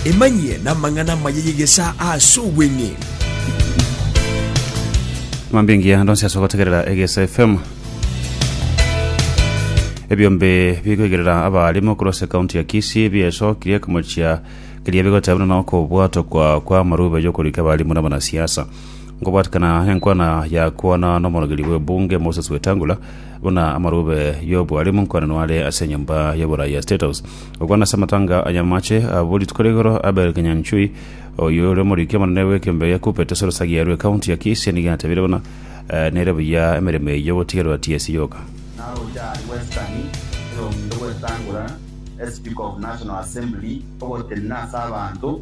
Emanyie namang'ana amaya y'egesaa ase obweng'eni. Mambia engiya ndonsi ase ogotegerera egesa FM. Ebiombe bigoigerera abarimo korwa ase kaunti ya Kisii biaesokirie komochia keria bigoteba buna nokobwatokwa kwa amarube yokorika abarimo na abanasiasa. Ngobwatikana enkwana ya kwana n'omorogeri bw'ebunge Moses Wetangula buna amarube y'obwaremu nkwanano are ase enyomba y'oborai ya State House, okwana ase amatanga a nyamaache abo rituko rigoro Abel Kinyanchui, oyio ore omoriki omonene bw'ekembe ya Kuppet ase Lusagi yarwo ekaunti ya Kisii nigo atebire buna nere buya emeremo eyio gotigerwa TSC yoka. Naroche aria Western erong'inte gwetangora Speaker of National Assembly ogotenena ase abanto.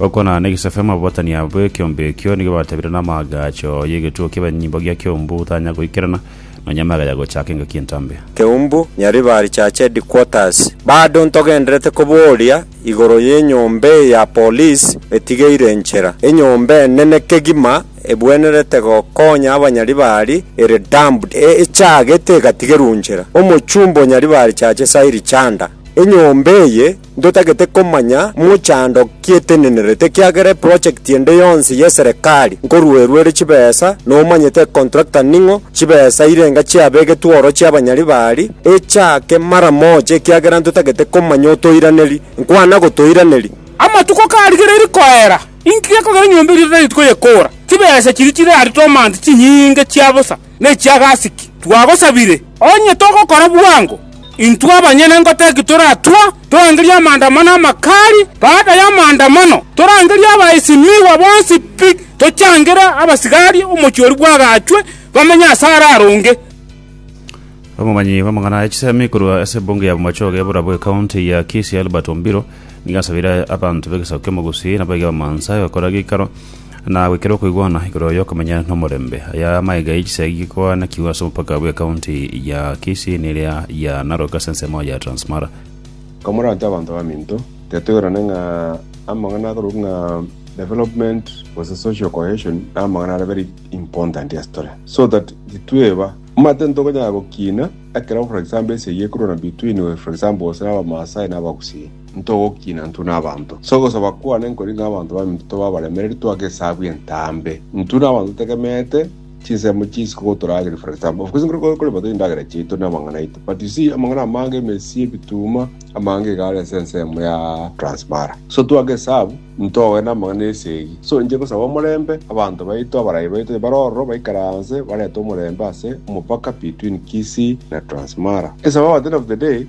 Okonana negesaku y'amababatania bw'ekeombe ekio nigo batabire n'amaagacho y'egetuo ki'ebenyimbo gia keumbu otanya goikerana nonya amega ya gochaaka engaki entambe. Keumbu, Nyaribari Church Headquarters. Bado ntogenderete kobooria igoro y'enyomba eye ya police etigeire enchera. Enyomba enene kegima ebwenerete gokonya abanyaribari ere dumped e echagete egatigerwa nchera. Omochumba o Nyaribari Church Sairi Chanda. Enyomba eye Ntotagete komanya mochando ki etenenerete ekiagera eproject ende yonsi y'eserekari nkoruerwa ere chibesa nomanyete econtractor ning'o chibesa irenga chiabegetwe oro chiabanyari bari echake mara moja ekiagera ntotagete komanya otoiraneri nkwana gotoiraneri Amatuko karigereiri koera, inki gekogera enyomba eria totagete koyekora? Chibesa chiria chirarete omanto chinyinge chia bosa. ne chiagasiki, twagosabire, onye togokora bwango, intwe abanyene ngotaki toratwa torangerie amaandamano amakali, baada y'amaandamano torangerie abaesimigwa bonsi pi, tochangere abasigari omochie oria bwagaachwe bamenye ase arare onge. Omomanyi bw'amang'ana e chisemi korwa ase ebunge ya Bomachoge y'oborabu ekaunti ya Kisii Albert Ombiro nigo asabire abanto b'egesaku ki'Omogusi nabo ege Abamansa gokora geikaro na goikera okoigwana igoro y'okomenya nomorembe. Aya amaiga ye chisegi gikoanakigwa ase omopaka bwe county ya Kisii ne eria ya Narok ase ensemo ya Transmara. Komoranche abanto baminto, tetoirane ng'a amang'ana akorokwa ng'a development gose social cohesion namang'ana are very important ase tore. So that titweba omanyete ntokonyara gokina ekero for example esegi ekorwana between for example gose na abamaasai na abagusii. Ntogokina intwe n'abanto, ase ogosaba kwane nkori ng'a abanto baminto tobe abaremereri toake esabu entambe, intwe n'abanto totegemeete chinsemo chinsinke gotorageria, for example, of course nkore korema toiye endagera chiaito na amang'ana aito, but you see amang'ana amange, emesi, ebituma, amange iga are ase ense eyemo ya Transmara, so toake esabu ntoe namang'ana na esegi, so inche ngosaba omorembe abanto baito, abarayi baito onye bare ororo baikaranse barete omorembe ase omopaka between Kisii na Transmara, esaba at the end of the day.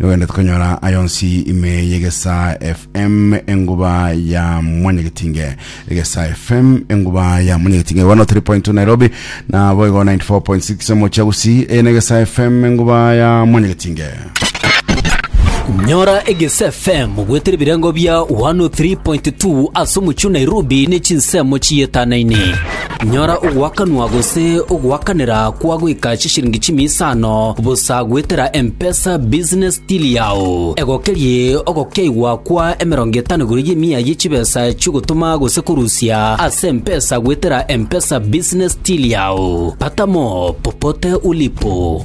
Nogende tukanyora ayonsi ime yegesa FM enguba ya mwanyegetinge egesa FM enguba ya mwanyegetinge 103.2 Nairobi na boigo 94.6 mochagusi enegesa FM enguba ya mwanyegetinge nyora egese fm gwetera ebirengo bia 103.2 ase omochio nairobi ne chinsemo chiyetanaine Nyora ogoakanwa gose ogoakanera kwa goika chisiringi chimia isano bosa goetera M-Pesa Business Till yao. Egokerie ogokeigwa kwa emerongo etano igoro y'emia ye chibesa chi'ogotoma gose korusia ase M-Pesa goetera M-Pesa Business Till yao. Pata mo popote ulipo.